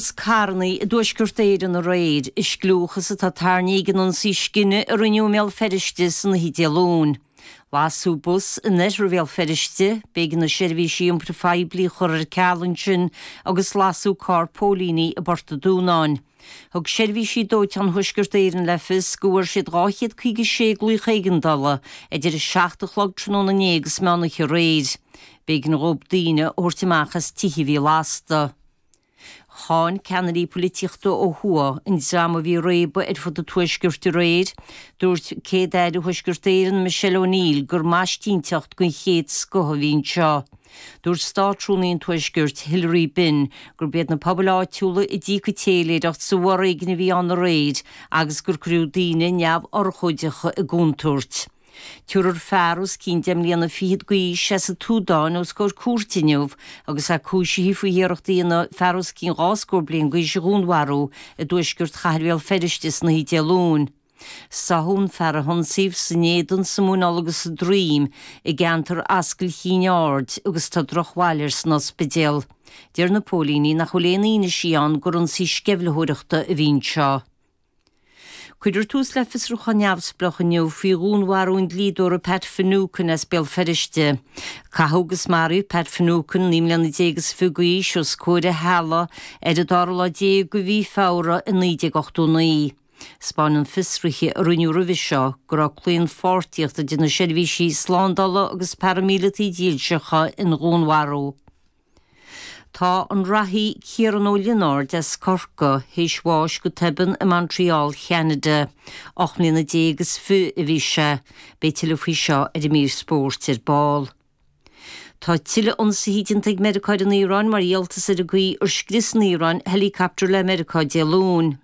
as carrannaí i dTuaisceart Éireann aréir, i scliúchas atá tarraingthe ag an ionsaí scine a rinneadh i mBéal Feirste san oíche Dé Luain. Lasadh bus in oirthear Bhéal Feirste, b'éigean na seirbhísí iompair phoiblí a chur ar ceal ansin agus lasadh carr póilíní i bPort an Dúnáin. Thug seirbhísí dóiteáin Thuaisceart Éireann le fios go bhfuair siad 256 glaoch éigeandála idir 7 a chlog tráthnóna inné agus meán oíche aréir. B'éigean dhóibh daoine a thabhairt amach as tithe a bhí lasta. Cháin ceannairí polaitíochta ó thuaidh an dream a bhí réabadh ar fud an Tuaiscirt aréir. Dúirt Céad-Aire Thuaisceart Éireann Michelle O'Neill gur maistínteacht gon chéad scoth a bhí anseo. Dúirt Státrúnaí an Tuaiscirt, Hilary Benn, gurb iad na pobail áitiúla a d'íoc an táilliúireacht sa bhforéigean a bhí ann aréir agus gur cuireadh daoine neamhurchóideacha i gcontúirt. Tabharfar fear os cionn deich mbliana fichead d'aois as an tSúdáin os comhair cúirte inniu agus é cúisithe faoi iarracht a dhéanamh fear os cionn dhá scór bliain d'aois a dhúnmharú i dtuaisceart chathair Bhéal Feirste san oíche Dé Luain. Sáthadh an fear a hionsaíodh san éadan, sa mhuineál agus sa droim i gceantar Ascaill Chinn Aird agus tá drochbhail air san ospidéal. Deir na póilíní nach bhfuil aon fhianaise ann gur ionsaí sceimhlitheoireachta a bhí anseo. Cuireadh tús le fiosrúchán neamhspleách inniu faoi dhúnmharú an dlíodóra Pat Finucane as Béal Feirste. Caitheadh agus maraíodh Pat Finucane, naoi mbliana déag is fiche d'aois, os comhair a theaghlaigh ar an dara lá déag de mhí Feabhra i 1989. Spáin fiosruithe a rinneadh roimhe seo go raibh claonpháirtíocht idir na seirbhísí slándála agus paraimíleataigh dhílseacha ina dhúnmharú. Tá an reathaí Ciaran Ó Lionáird as Corcaigh théis bháis go tobann i Montreal Cheanada. Ocht mbliana déag is fiche a bhí sé. Beidh tuilleadh faoi seo ar an mír spóirt ar ball. Tá tuilleadh ionsaithe déanta ag Meiriceá ar an Iaráin mar dhíoltas ar an gcaoi ar scrios an Iaráin helicopter le Meiriceá Dé Luain.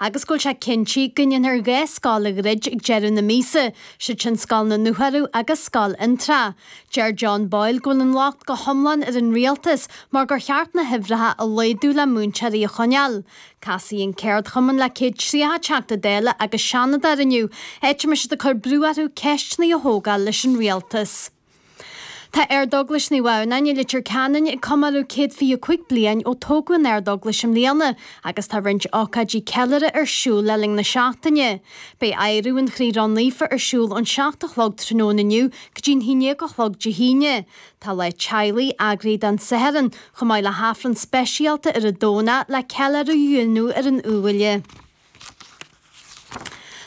agus go bhfuil sé cinnte go ndéanfar dhá scoil a dhruid ag deireadh na míosa, siad sin Scoil na nDúthárach agus Scoil Fhionntrá. Deir John Boyle go bhfuil an locht go hiomlán ar an rialtas mar gur cheart na huimhreacha a laghdú le múinteoirí a choinneáil. Casfaidh an céardchumann le 100 tríocha Teachta Dála agus Seanadóir inniu, áit a mbeidh siad ag cur brú orthu ceisteanna a thógáil leis an rialtas. Tá Ardeaglais Naomh Adhamhnáin i Leitir Ceanainn ag comóradh céad fiche a cúig bliain ó tógadh an ardeaglais i mbliana agus tá roinnt ócáidí ceiliúrtha ar siúl le linn na seachtaine. Beidh Adhradh an Chroí Ró-Naofa ar siúl ón seacht a chlog tráthnóna inniu go dtí'n haon dhéag a chlog Dé hAoine. Tá Lá Teaghlaigh eagraithe don Satharn, chomh maith le hAifreann speisialta ar an Domhnach le ceiliúradh a dhéanamh ar an Iubhaile.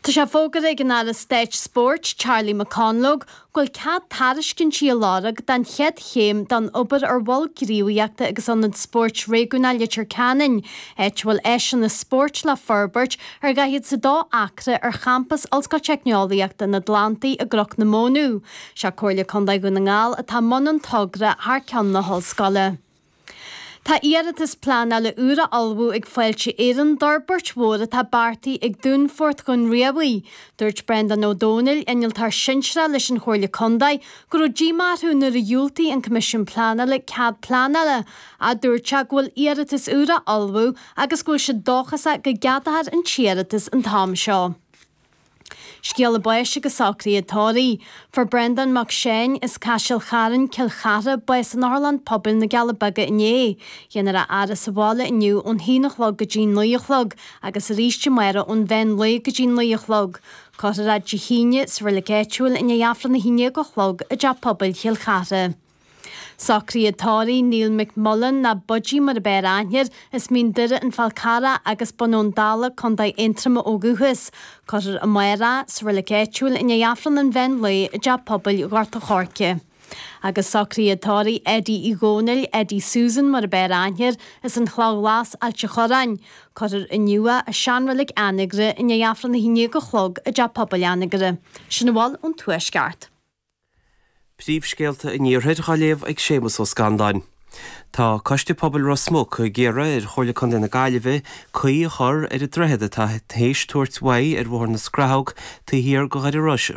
Tá sé fógartha ag an Aire Stáit Spóirt, Charlie McConalogue, go bhfuil cead tairiscintí a lorg don chéad chéim den obair ar Mhol Gníomhaíochta agus Ionad Spóirt Réigiúnach Leitir Ceanainn, áit a bhfuil áiseanna spóirt le forbairt ar dhaichead is a dó acra ar champas Ollscoil Teicneolaíochta an Atlantaigh i gCnoc na Móna. Sé Comhairle Contae Dhún na nGall atá i mbun an togra thar ceann na hollscoile. Tá iarratas pleanála úr á ullmhú ag Fáilte Éireann d'fhorbairt mhór atá beartaithe ag Dúnfort Dhún Riabhaigh. Dúirt Breandán Ó Dónaill, Innealtóir Sinsearach leis an Chomhairle Contae, go raibh díomá orthu nuair a dhiúltaigh an Coimisiún Pleanála cead pleanála, ach dúirt sé go bhfuil iarratas úr á ullmhú agus go bhfuil siad dóchasach go gceadófar an t-iarratas an t-am seo. Scéala báis agus socruithe tórraimh. Fuair Breandán Mac Seáin, as Caiseal Charn, Cill Chartha, bás in Otharlann Pobail na gCealla Beaga inné. Déanfar a fhaire sa bhaile inniu ón haon a chlog go dtí an naoi a chlog agus arís amárach ón mheán lae go dtí an naoi a chlog. Cuirfear é Dé hAoine sa reilig áitiúil i ndiaidh Aifreann a haon déag a chlog i dTeach Pobail Chill Chartha. Socruithe tórraimh Neil McMullan nó Budgie mar a b'fhearr aithne air, as Mín Doire, an Fál Carrach agus Bun Abhann Dalla, Contae Aontroma ó dhúchas. Cuirfear amárach é sa reilig áitiúil i ndiaidh Aifreann an Mheán Lae i dTeach Pobail Ghort a' Choirce. Agus socruithe tórraimh Eddie Uí Dhónaill, Eddie Susan mar a b'fhearr aithne air, as an Chloch Ghlas, Ailt a' Chorráin. Cuirfear inniu é i seanreilig Anagaire i ndiaidh Aifreann a haon dhéag a chlog i dTeach Pobail Anagaire. Sin a bhfuil ón Tuaisceart. Príomhscéalta an Iarthair dhá léamh ag Séamas Ó Scanláin. Tá Coiste Pobail Ros Muc ag iarraidh ar Chomhairle Contae na Gaillimhe caoi a chur ar an droichead atá théis tabhairt uaidh ar Bhóthar na Scrathóg taobh thiar de Dhoire Iorrais i